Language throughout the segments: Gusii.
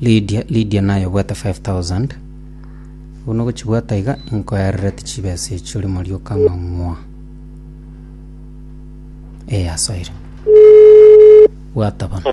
Lydia, Lydia naye obwate 5000 bono gochibwata iga nkoererete chibesa echi ore morioka ng'a ng'wa ee asoire bwata bono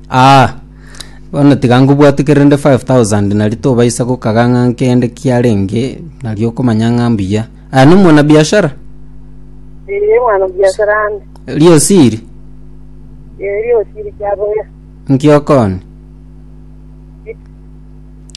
Aa, bono tiga nkobwate kere rende 5,000 nari tobaisa gokaga ng'a nkende kiarenge, nari okomanya ng'a mbuya. Aya no mwana biashara? Ee, mwana biashara ande. Riosiri? Ee, riosiri kiaboya. Nkiokoni?